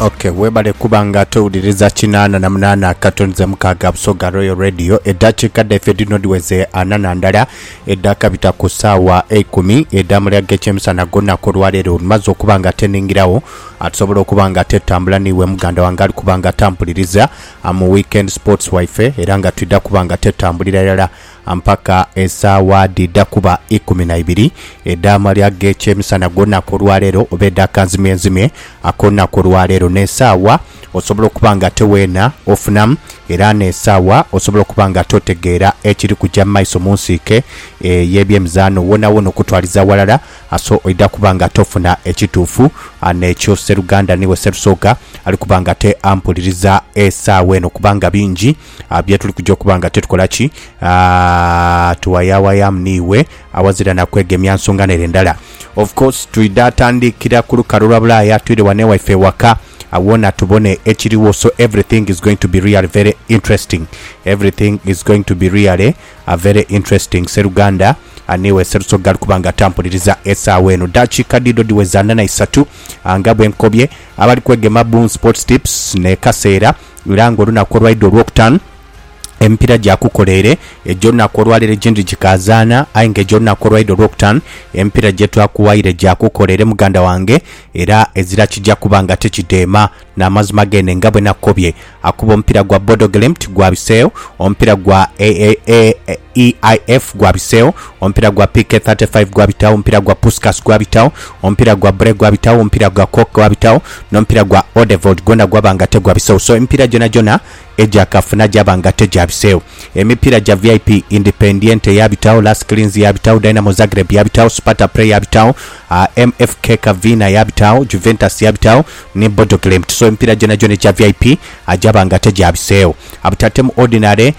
Okay, webale kuba nga towuliriza kinaana na munaana katoni ze mukaaga Busoga Royal Radio eddakiika dhaife dhino dhiweze ana na ndala edhakabita ku ssaawa eikumi edhaamulya g'ekyemisana gw'olunaku olwaleero olumaze okuba nga teningirawo atusobola okuba nga tetambula niiwe muganda wange ali kuba nga tampuliriza mu weekend sports waife era nga twidha kuba nga tetambulira irala mpaka esaawa dhidha kuba ikumi na ibiri edh'amalya g'ekyemisana ag'olunaku olwaleero, oba edha kanzimyenzimye ak'olunaku olwaleero, n'esaawa osobola okuba ng'ate weena ofunamu, era n'esaawa osobola okuba ng'ate otegeera ekiri kuja mu maiso mu nsiike ey'ebyemizaano. Woonawoona okutwaliza aghalala, aso oidha kuba ng'ate ofuna ekituufu. N'ekyo sseruganda niiwe sserusooka ali kuba ng'ate ampuliriza esaawa eno, kubanga bingi ah, bye tuli kuja okuba nga tukola ki, ah, tuwayaawayamu niiwe awazira na kwegemya nsonga nere ndala. Of course twidha tandikira ku lukalu lwa Bulaaya twire wano ewaife ewaka awona tubone ekiriwo so everything is going to be really very interesting everything is going to be really a very interesting seruganda ah, niiwe serusoga ali kuba nga atampuliriza esaawa eno dakiika diido diweza ana na isatu ah, nga bwe nkobye abali kwegema Boom Sports Tips ne Kaseera era nga olunaku olwaidha olwokutaanu emipiira gyakukola ere egy'olunaku olwaleero egindhi gikaazaana aye nga egy'olunaku olwaidha olwokutaanu emipiira gyetwakuwaire gyakukola ere muganda wange era ezira kigya kuba nga tikidheema n'amazima gene nga bwenakukobye akuba omupiira gwa Bodo Glimt gwabiseegho omupiira gwa EIF gwabiseegho, omupiira gwa PK 35 gwabitagho, omupiira gwa Puskas gwabitagho, omupiira gwa Bre gwabitagho, omupiira gwa Cork gwabitagho, n'omupiira gwa Odevold gwona gwaba nga tegwabiseegho. So emipiira gyonagyona egya kafuna gyaba nga tegyabiseegho. Emipiira gya VIP, Independiente yaabitagho, Las Clins yaabitagho, Dynamo Zagreb yaabitagho, Sparta Preh yaabitagho, MF Kirka Vina yaabitagho, Juventus yaabitagho ni Bodo Glimt. So emipiira gyonagyona egya VIP gyaba nga tegyabiseegho. Abutatemu Ordinary.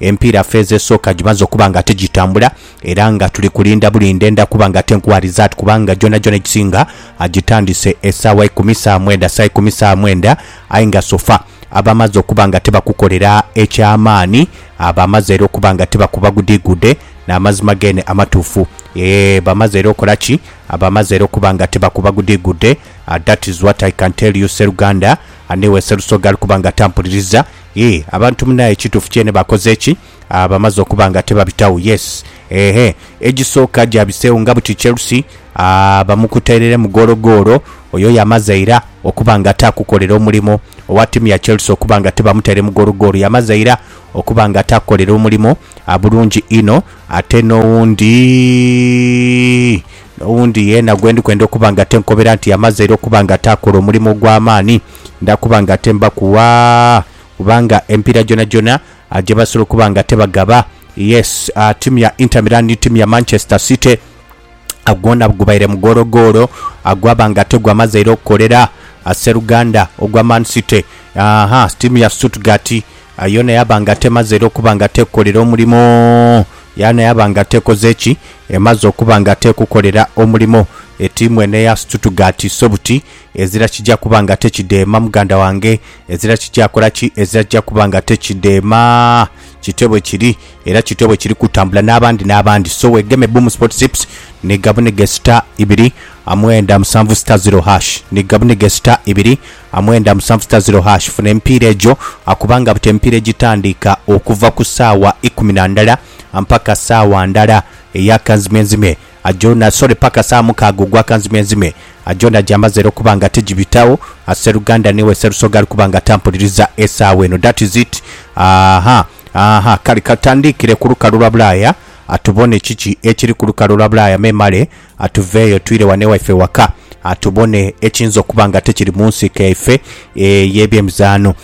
Empiira feezi esooka gimaze okuba nga tigitambula era nga tuli kulinda bulinda enda kuba nga tenkuwa rizaati kubanga gyonagyona egisinga agitandise esaawa ikumi saa mwenda saa ikumi saa mwenda aye nga sofa abamaze okuba nga tibakukolera eky'amaani abamaze era okuba nga tibakuba gudiigude n'amazima geene amatuufu eeh bamaze era okola ki abamaze era okuba nga tibakuba gudiigude Ah, that is what I can tell you Sseruganda aniwe Sserusoga ali kuba nga tampuliriza Yii abantu munaye kitufu kyene bakoze ki aa bamaze okuba nga tebabitawo yes eeh egisooka gyabisewo nga buti Chelsea aa bamukutereremu goolo goolo oyo yamaze ira okuba nga takukolera omulimo owa timu ya Chelsea okuba nga tebamuteremu goolo goolo yamaze ira okuba nga takukolera omulimo abulungi inho, ate n'owundi, n'owundi yeena gwe ndi kwenda okuba nga ate nkobera nti amaze era okuba nga ate akola omulimu ogw'amaani, nda kuba nga ate mbakuwa, kubanga emipiira gyonagyona ah, gye basobola okuba nga ate bagaba, yes, ah, ttiimu ya Inter Milan ni ttiimu ya Manchester City, gwona gubaire mugologoolo gwaba nga tegwamazeire okukolera seruganda ogwa Man City. Aha, tiimu ya Stuttgart yona yaba nga temazeire okuba nga tekukolera omulimo, yana yaba nga tekoze ki, emaze okuba nga tekukolera omulimo. Etiimu eno eya Stuttgart so buti ezira kija kuba nga tekideema muganda wange, ezira kija kola ki, ezira kija kuba nga tekideema. Kityo bwe kiri, era kityo bwe kiri kutambula n'abandi n'abandi. So wegeme Boom Sport Zips ni gabunige star ibiri amwenda musanvu star zero hash ni gabunige star ibiri amwenda musanvu star zero hash funa emipiira egyo akubanga buti emipiira egitandiika okuva ku saawa ikumi na ndala ampaka saawa ndala eyakanzimyenzimye. Ajoona sorry paka saa mukaaga ogwa kanzimenzime ajoona gyamaze era okuba nga tijibitagho a seruganda newe serusoga alikuba nga tampuliriza esaawa eno that is it aaha aaha kale katutandiikire ku lukalu lwa bulaaya atubone kiki ekiri ku lukalu lwa bulaaya memale atuveeyo twire ghano ewaife ewaka atubone ekiyinza okuba nga tekiri mu nsiike yaife ey'ebyemizaano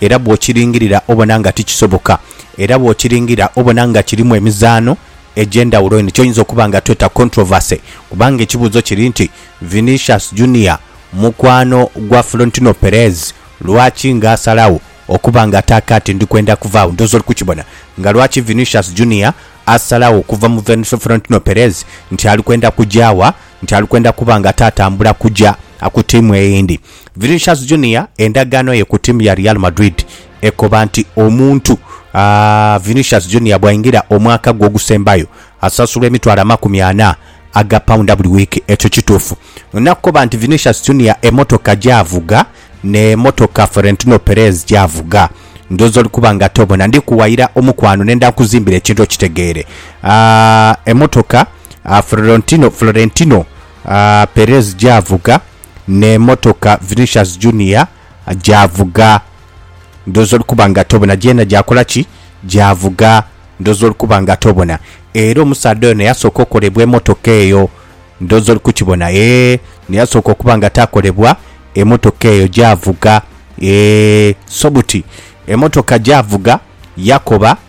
era bw'okiringirira obona nga tikisoboka, era bw'okiringirira obona nga kirimu emizaano egy'endhawulo eno ky'oyinza okuba nga tweta controversy kubanga ekibuuzo kiri nti, Vinicius Junior mukwano gwa Florentino Perez lwaki nga asalagho okuba nga ata kaati ndi kwenda kuvaagho? Ndhooza oli kukibona nga lwaki Vinicius Junior asalagho okuva mu Florentino Perez nti ali kwenda kugya wa? Nti ali kwenda kuba nga ata atambula kugya ku tiimu eyindi. Vinicius Junior endagaano ye ku tiimu ya Real Madrid ekoba nti omuntu Vinicius Junior bw'aingira omwaka gwe ogusembayo asasulwa emitwalo amakumi ana aga paunda buli wiiki. Ekyo kituufu? Ndina kukoba nti Vinicius Junior emmotoka gy'avuga n'emmotoka Florentino Perez gy'avuga ndhooza oli kuba nga tobona. Ndi kuwayira omukwano nenda nkuzimbira ekintu okitegeere. Emmotoka Florentino Perez gy'avuga n'emotoka Vinicius Junior gy'avuga ndhooza oli kuba nga tobona, gyena gyakola ki? Gyavuga ndhooza oli kuba nga tobona. Era omusaadha ono yasooka okolebwa emotoka eyo ndhooza oli kukibona, ee ni yasooka okuba nga taakolebwa emotoka eyo gyavuga. Ee, so buti emotoka gyavuga yakoba.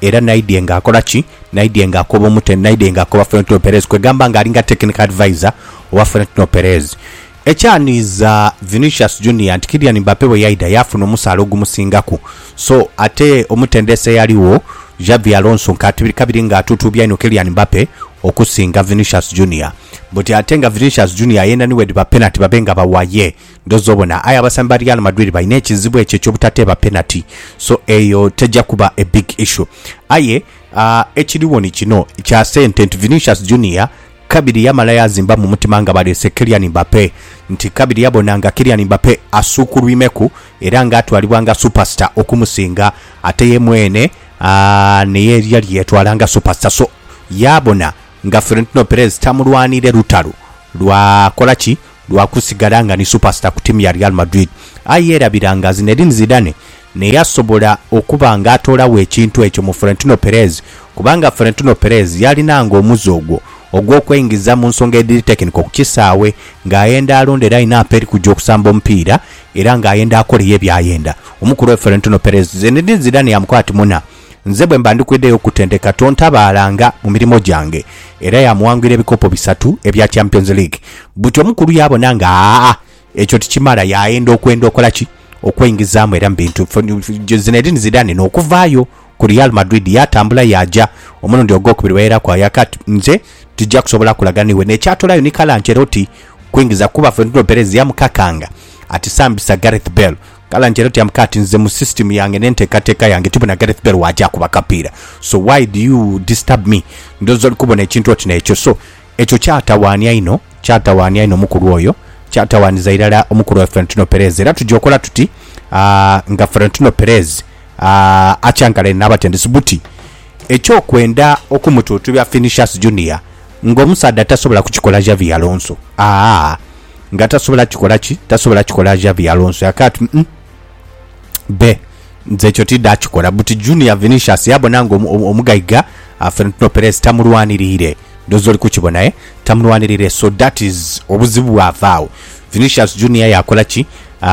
Era naidye nga akola ki? Naidye nga akoba omutendesi, naidye nga akoba Florentino Perez, kwegamba nga alinga technical adviser owa Florentino Perez. Ekyanhiiza Vinicius Junior nti Kylian Mbappe bwe yaidha yaafuna omusaala ogumusingaku. So ate omutendesi eyaligho, Xabi Alonso, nk'atibiri kabiri nga atuutuubya inho Kylian Mbappe okusinga Vinicius Junior. Buti ate nga Vinicius Junior yenha ni bwedhiba penati babe nga bawa ye. Ng'oza obona, aye abasambi ba Real Madrid balina ekizibu ekyo eky'obutateeba penati, so eyo teja kuba a big issue. Aye ekiriwo ni kino kya sente nti Vinicius Junior kabiri yamala yaazimba mu mutima nga baleese Kylian Mbappe nti kabiri yabona nga Kylian Mbappe asuukulwimeku era ng'atwalibwa nga superstar okumusinga ate ye mwene naye yali yeetwala nga superstar so yaabona nga Florentino Perez tamulwanire lutalo lwa kola ki lwa kusigala nga ni supasita ku tiimu ya Real Madrid, aye yeerabira nga Zinedine Zidane naye yasobola okuba nga atoolagho ekintu ekyo mu Florentino Perez kubanga Florentino Perez yalinanga omuze ogwo ogw'okweingiza mu nsonga edhiri tekiniko ku kisaawe ng'ayenda alonda era alina apa eri kuja okusamba omupiira era ng'ayenda akoleyo ebyayenda. Omukulu we Florentino Perez, Zinedine Zidane yamukoba ati, Muna. Nze bwe mba ndi kwidhayo okukutendeka tontabaalanga mu mirimo gyange. Era yaamuwangwira ebikopo bisatu ebya Champions League. Buti omukulu yaabona nga aa ekyo tikimala yaayenda okwenda okola ki? Okweingizamu era mu bintu. Zinedine Zidane n'okuvaayo ku Real Madrid yaatambula yaaja omulundi ogwokubiri wairaku ayaka ati, Nze tija kusobola kulaga n'iwe. N'ekyatoolayo ni kala nti era oti kwingiza kuba Florentino Perez yamukakanga ati, Sambisa Gareth Bale. Kala nti era tyambuka ati nze mu system yange ne ntekateka yange tibona Gareth Bale waja kuba kapiira so why do you disturb me ndowoza oli kubona ekintu oti nekyo so ekyo kyatawanya inho kyatawanya inho omukulu oyo kyatawaniza irala omukulu oyo Florentino Perez era tuja okola tuti ah, nga Florentino Perez ah, akyankalane nabatendesi buti ekyokwenda okumututubya Vinicius Junior nga omusaadha tasobola kukikola Xavi Alonso ah, Nga tasobola kikola ki? Tasobola kikola Xabi Alonso yakaya ati, Mm, be, nze ekyo tidha kikola. Buti Junior Vinicius yabona nga omugaiga uh, Florentino Perez tamulwanirire. Ndoza oli kukibona, eh? Tamulwanirire, so that is obuzibu bwavaawo. Vinicius Junior yakola ki? Uh,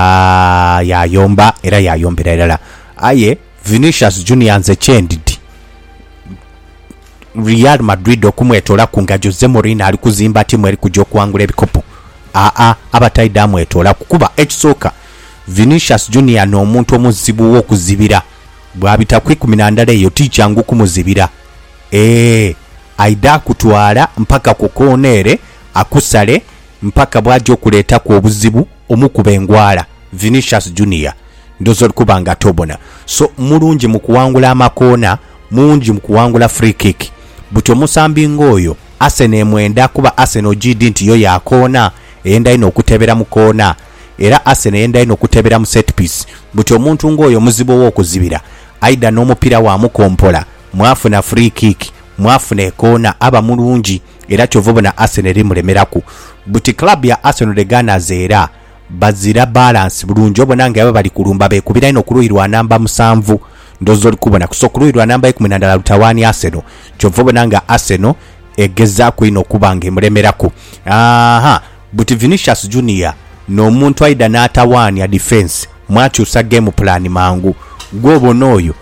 yayomba era yayombera irala. Aye Vinicius Junior nze kyendidi Real Madrid okumwetoola ku ngagyo ze Mourinho ali kuzimba tiimu eri kuja okuwangula ebikopo? Aa, abataidha amwetoolaku kuba ekisooka Vinicius Junior n'omuntu omuzibu ow'okuzibira. Bw'abita ku ikumi na ndala eyo ti kyangu kumuzibira. Eeh, aidha akutwala mpaka ku koona ere akusale mpaka bw'aja okuleetaku obuzibu. Omu ku bengwala, Vinicius Junior, ndhoozi oli kuba nga tobona. So, mulungi mu kuwangula amakoona, mungi mu kuwangula free kick. Buti omusambi ng'oyo, Arsenal emwenda kuba Arsenal ogiidhi nti yo ya koona, eyenda inho okutebera mu koona. Era Arsenal eyenda inho okutebera mu set piece. Buti omuntu ng'oyo muzibu ow'okuzibira. Aidha n'omupiira waamukompola, mwafuna free kick, mwafuna ekoona, aba mulungi. era kyova obona Arsenal eri mulemeraku buti club ya Arsenal the Gunners era bazira balance bulungi obona nga eba bali kulumba bekubira inho kuluyi lwa namba musanvu ndowoza oli kubona kusa kuluyi lwa namba ikumi nandala lutawani Arsenal kyova obona nga Arsenal egezaku inho okuba nga emulemeraku aa buti Vinicius Junior nomuntu aidha natawania defence mwakyusa game plan mangu gwe obona oyo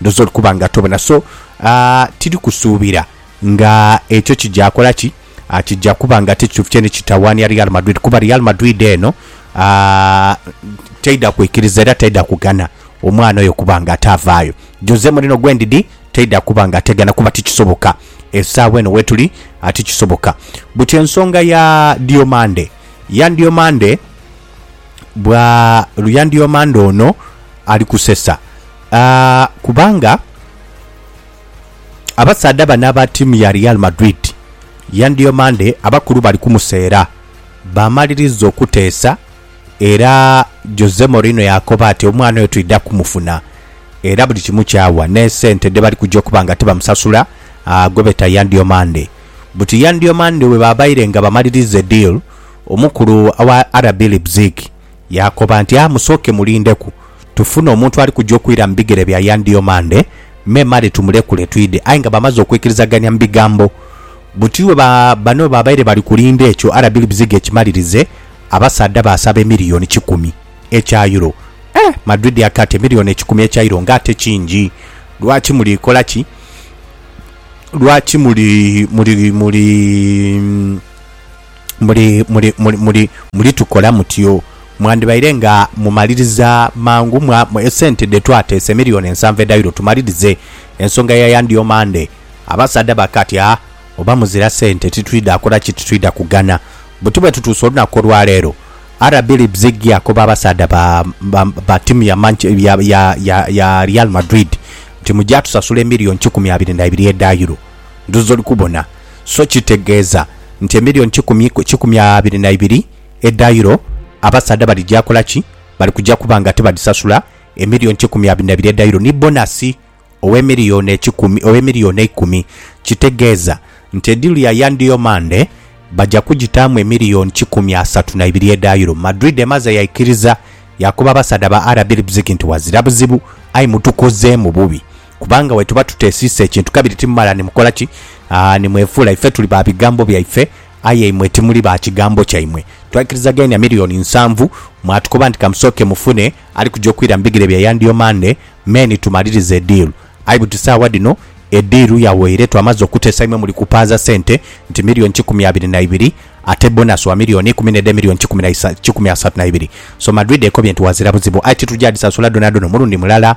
Ndhooza oli kuba nga tobona, so tiri kusuubira nga ekyo kija kola ki, kija kuba nga ti kituufu kyene kitawaania Real Madrid kuba Real Madrid eno teidha kwikiriza era teidha kugana omwana oyo kuba nga ate avaayo. Jose Mourinho gwe ndidhi teidha kuba nga ategana kuba ti kisoboka esaawa eno wetuli, ti kisoboka. Buti ensonga ya Diomande, Yan Diomande bwa Luyandhiomandha ono ali kusesa kubanga abasaadha bano aba ttiimu ya Real Madrid, Yandhiomandhe abakulu bali kumuseera baamaliriza okuteesa era Jose Mourinho yaakoba ati omwana oyo twidha kumufuna era buli kimu kyawa n'esente dhe bali kuja okuba nga tibamusasula gwe beta Yandhiomandhe. Buti Yandhiomandhe bwe baabaire nga bamaliriza ediiru Omukulu wa RB Leipzig yaakoba nti, A musooke mulindeku tufune omuntu ali kuja okwira mu bigere bya Yan Diomande, memale tumulekule twidhe. Aye nga bamaze okwikirizagania mu bigambo buti bwe bano bwe babaire bali kulinda ekyo RB Leipzig ekimalirize, abasaadha baasaba emiliyoni kikumi ekya Euro. Eh! Madrid aka ati, Emiliyoni ekikumi ekya Euro nga ate kingi! Lwaki muli kola ki? Lwaki muli, muli, muli. muli, muli, muli, muli, mulitukola mutyo. Mwandibaire nga mumaliriza mangu, mwa, esente dhe twateesa, emilioni ensanvu edhairo, tumalirize ensonga ya yandi omande. Abasaadha bakatya, oba muzira sente titwidha kola ki? Titwidha kugana. Buti bwe tutuuse olunaku olwa leero, RB Leipzig yakoba abasaadha ba, ba, ba tiimu ya, Manch, ya, ya, ya, ya Real Madrid nti, Mugya tusasula emilioni kikumi abiri na ibiri edha euro. ndhu z'oli kubona, so kitegeeza nti emilioni kikumi ku kikumi abiri na ibiri edha Euro abasaadha bali ja kola ki? Bali kuja kuba nga tibadhisasula emilioni kikumi abiri na ibiri edha Euro ni bonasi ow'emilioni ekikumi, ow'emilioni eikumi. Kitegeeza nti ediiru ya Yann Diomande baja kugitaamu emilioni kikumi asatu na ibiri edha Euro. Madrid emaze yaikiriza, yaakoba abasaadha ba RB Leipzig nti, Ghazira buzibu, aye mutukozeemu bubi. Kubanga bwe tuba tuteesiise kintu kabiri timumala ni mukola ki? Aa, ni mwefuula ife tuli ba bigambo byaife, aye imwe timuli ba kigambo kyaimwe. Twaikirizaghania milioni nsanvu, mwatukoba nti kamusooke mufune ali kuja okwira mu bigere bya Yandio Mande me ni tumaliriza ediiru. Aye buti saagha dhino ediiru yaweire, twamaze okuteesa imwe muli kupaaza sente nti milioni kikumi abiri na ibiri, ate bonasi wa milioni ikumi n'edh'emilioni kikumi na isa, kikumi asatu na ibiri. So Madrid ekobye nti ghazira buzibu, aye titugya dhisasula dhonadhona omulundi mulala.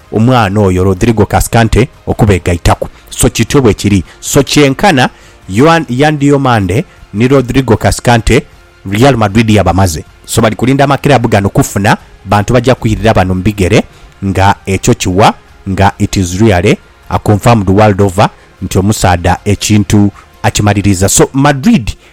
Omwana oyo Rodrigo Cascante okubeegaitaku. So kityo bwe kiri. So kyenkana Yoan, Yan Diomande ni Rodrigo Cascante, Real Madrid yabamaze. So bali kulinda amakiraabu gano kufuna bantu baja kwirira bano mu bigere nga ekyo kiwa nga it is really a confirmed world over nti omusaadha ekintu akimaliriza. So Madrid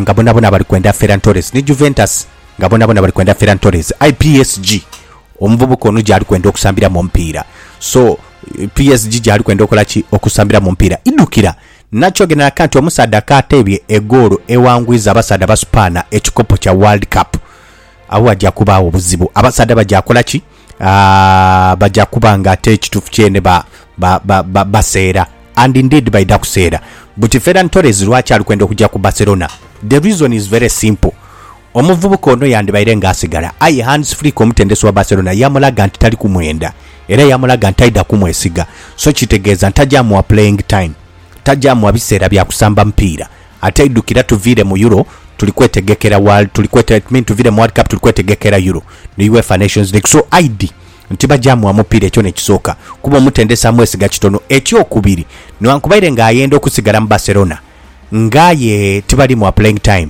nga bonabona bali kwenda Ferran Torres ni Juventus nga bonabona bali kwenda Ferran Torres aye PSG omuvubuka ono gyali kwenda okusambiramu omupiira so PSG gyali kwenda okola ki okusambiramu omupiira idhukira nakyogeranaku nti omusaadha kaateebye egoolo ewangwiza abasaadha Basupaana ekikopo kya World Cup agho ghagya kubaagho buzibu abasaadha bagya kola ki? aah, baja kuba nga ate ekituufu kyene ba, ba, ba, ba, baseera. And indeed baidha kuseera. Buti Ferran Torres lwaki ali kwenda okuja ku Barcelona? The reason is very simple. Omuvubuka ono yandibaire nga asigala, aye Hans Flick omutendesi wa Barcelona yamulaga nti tali kumwenda era yamulaga nti taidha kumwesiga. So kitegeeza nti taja muwa playing time, taja muwa biseera bya kusamba mupiira. Ate idhukira tuviire mu Euro tuli kwetegekera World tuli kwete it mean tuviire mu World Cup tuli kwetegekera Euro ni Uefa Nations League so aidhi nti bagya mugha mupiira ekyo n'ekisooka kuba omutendesi amwesiga kitono. Ekyokubiri nighankubaire nga ayenda okusigala mu Barcelona nga aye tibali mugha playing time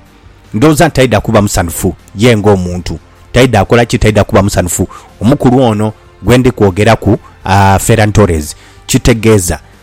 ndhowooza nti taidha kuba musanhufu ye ng'omuntu taidha kola ki taidha kuba musanhufu. Omukulu ono gwe ndi kwogeraku, aa, Ferran Torres. Kitegeeza.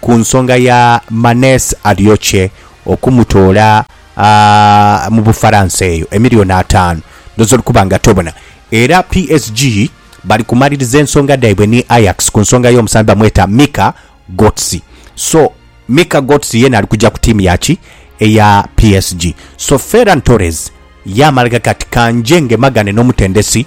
Ku nsonga ya Manes Ariokce okumutoola mu Bufaransa eyo, emiliyoni ataanu dh'oyinza okuba nga tobona. Era PSG bali kumaliriza ensonga dhaibwe ni Ajax ku nsonga y'omusambi bamweta Mika Götze. So, Mika Götze yeena ali kuja ku ttiimu ya ki? Eya PSG. So, Ferran Torres yaamala ghaga ati, Ka nje ngemaghane n'omutendesi.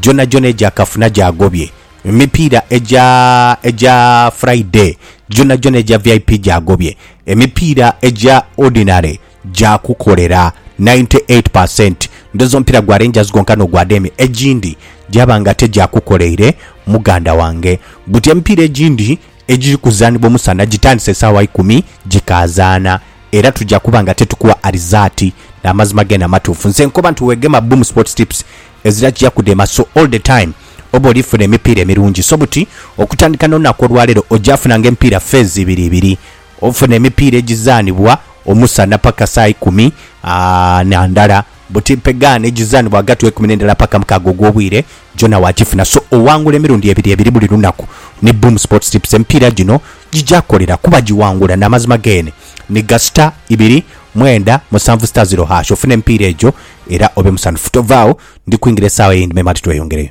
gyonhagyonha egya kafuna gyagobye, emipiira egya egya Friday gyonhagyonha egya vip gyagobye, emipiira egya Ordinary gyakukolera ninety eight per cent. Ndhooza omupiira gwa Rangers gwonka n'ogwa Deme egindi gyaba nga tegyakukoleire muganda wange. Buti emipiira egindi egiri kuzaanibwa omusana gitandise saagha ikumi gikaazaanha era tuja kuba nga tetukuwa arizaati. Amazima geene amatuufu. Nze nkoba nti weegema Boom Sports Tips ezira kugya kudema so all the time oba oli funa emipiira emirungi so buti okutandika nolunaku olwalero ogya funa nga emipiira phase ibiri ibiri ofuna emipiira egizanibwa omusana paka saha ikumi aah na ndala buti mpegaano egizanibwa ghagati we kumi ne ndala paka mukaaga ogwobwire gyona wagifuna so owangula emirundi ebiri ebiri buli lunaku ni boom sports tips emipiira gyino gyigya kolera kuba gyiwangula namazima gene ni gasita ibiri mwenda musanvu sita ziro hash ofuna emipiira egyo era obe musanhufu. Tova agho, ndi kwingira esaagha eyindi me mati tweyongereyo.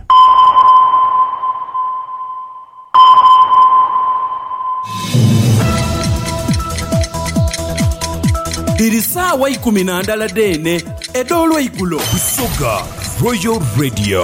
Dhiri saagha ikumi na ndala dheene edh'olweigulo. Busoga Royal Radio.